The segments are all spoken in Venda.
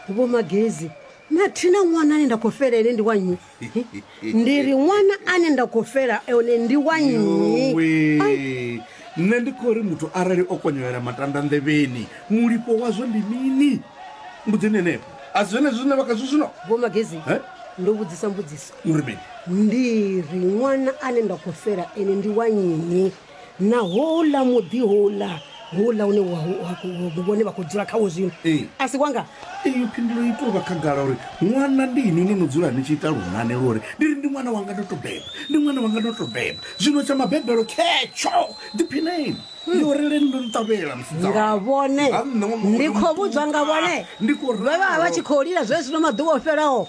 vho magezi na thina ṅwana ane nda khou fela ene ndi wa nnyi ndi ri ṅwana ane nda khou fela one ndi wa nnyi Yowe. nṋe ndi khou ri muthu arali o konyolela matanda nḓevheni mulipo wazwo ndi mini mbudzini henefho a si zwenezwi zwine vha khazwo zwino vho magezi Eh? ndo vhudzisa mbudziso uri mini ndi ri ṅwana ane nda khou fela ene ndi wa nnyi na houḽa muḓi houḽa houḽa une vhone vha khou dzula khawo zwino a si wanga iyo phindulo i tou vha khagala uri ṅwana ndi ini no no dzula ni tshi ita lunane lwo uri ndi ri ndi ṅwana wanga ndo to beba ndi ṅwana wanga ndo to beba zwino tsha mabebelo khetsho ḓiphineni hmm. yo releni ndo nṱavhela nga vhone ndi khou vhudzwa nga vhone vha vha vha tshi khou lila zwezwino maḓuvha o fhelaho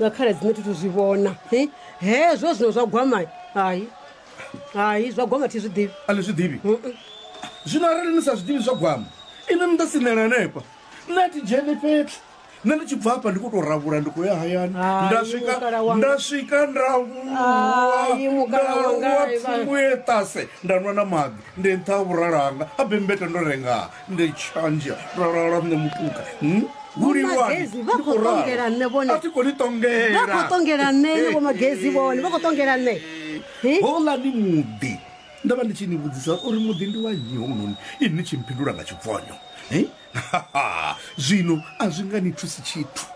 nga khala dzine thi thu zwi vhona Hi, hezwo zwino zwa gwama hai hai zwa gwama thi zwi ḓivhi a ni zwi ḓivhi Mm-mm. zwino arali ni sa zwi ḓivhi zwa gwama inwi ni ḓo sinela hanefha nṋe a thi dzheni fhethu nṋe ndi tshi bva hafha ndi khou tou ravhula ndi khou ya hayani Hai, nda swika mukala wanga. nda swika nda Hai, vhuwa mukala wanga, nda vha- pfumbuye ṱase nda nwa na maḓi ndi nṱha ha vhuralo hanga a bembeta ndo rengaa nṋe tshanzhe ralala nṋe mupuka hmm? vhulivhani vha khou ṱongela nṋe vhone a thi koni ṱongela vha khou ṱongela nṋe ne vho magezi vhone vha khou ṱongela nṋe houḽa ni muḓi ndo vha ndi tshi ni vhudzisa uri muḓi ndi wa nnyi hounoni ini ni tshi mphindula nga tshibvonyo zwino a zwi nga ni thusi tshithu